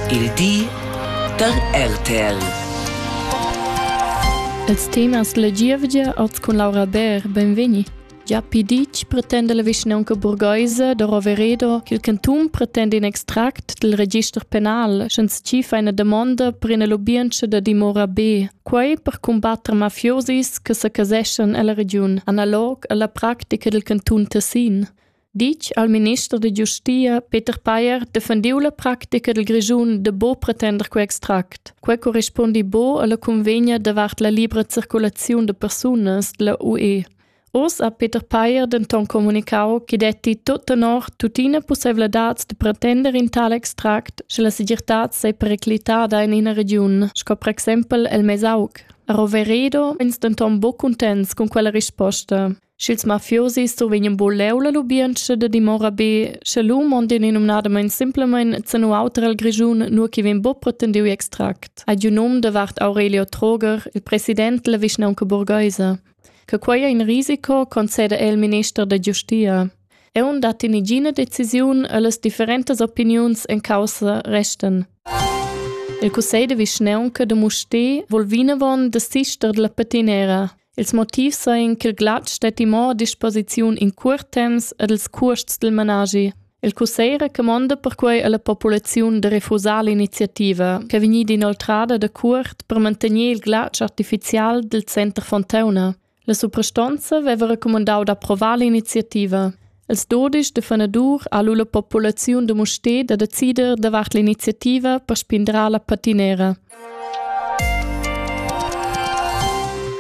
Il di da RTL. Els temas la gievgia oz cun Laura Bär, benvegni. Gia piditg pretenda la vischnaunca burgheisa da Roveredo ch'il cantun pretenda in extract dal register penal, sch'ins tschifa ina damonda per ina lubientscha da dimora B. Quei per cumbatter mafiosis che secaseschan ella regiun, analog alla practica dil cantun Tessin. ditg al minister da giustia Peter Payer defendiu la practica dil Grischun de bo pretender quei extract. Quei corrispondi bo alla convegna davart la libra circulaziun de persunas della UE. Oz ha Peter Payer denton comunicau che detti tot tenor tutina possibilitads de pretender in tal extract, sche la segirtad sei periclitada in ina region, sco per exempel el Mesauc. A Roveredo ins denton bo contents con quella risposta. Sch'ils mafiosi stovegnan buleu la lubientscha da dimora be, sche lu mondien numnadamein simplemein zenu auter el Grischun, nur chi vegn buc pretendiu extract, ad un um davart Aurelio Troger, il president della vischnaunca burgheisa. Che quei è in risico, concede el minister da giustia. Eu dat in igina decisiun e las differentas opiniuns en causa resten. Il cussegl de vischnaunca de Musté vol vinavon de sister della patinera. Ils motivs sajan ch'il glatsch stetti mo a disposiziun in curt temps ed ils cuosts dil manaschi. Il cussegl recumonda perquei alla populaziun da refusar l'iniziativa, che vegnida inoltrada da cuort per mantener il glatsch artificial dil center Fontauna. La suprastonza veva recumandau d'approvar l'iniziativa. Els dudisch da fanadur ha lu la populaziun da Mustér da decider davart l'iniziativa per spindrar la patinera.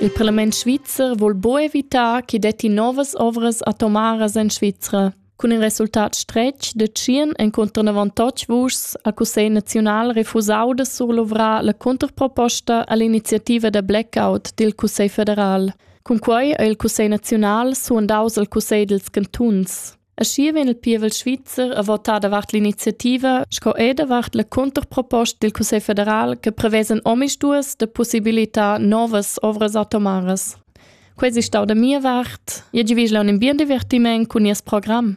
Il parlament svizzer vuol bo evitar che detti novas ovras atomaras en Svizra. Cun in resultat stretg de tschien encontro navantotg vuschs al Cussegl naziunal refusau de surluvrar la controproposta all'iniziativa da blackout dil Cussegl federal. Cunquei ha il cussegl naziunal suandaus al cussegl dils cantuns. Aschia vegn il pievel svizzer a votar davart l'iniziativa sco er davart la conterproposta dil Cussegl federal che prevesen omisduas de possibilitar novas ovras atomaras. Quei si stau da mia vart. Je givisla un bien divertiment cun nies program.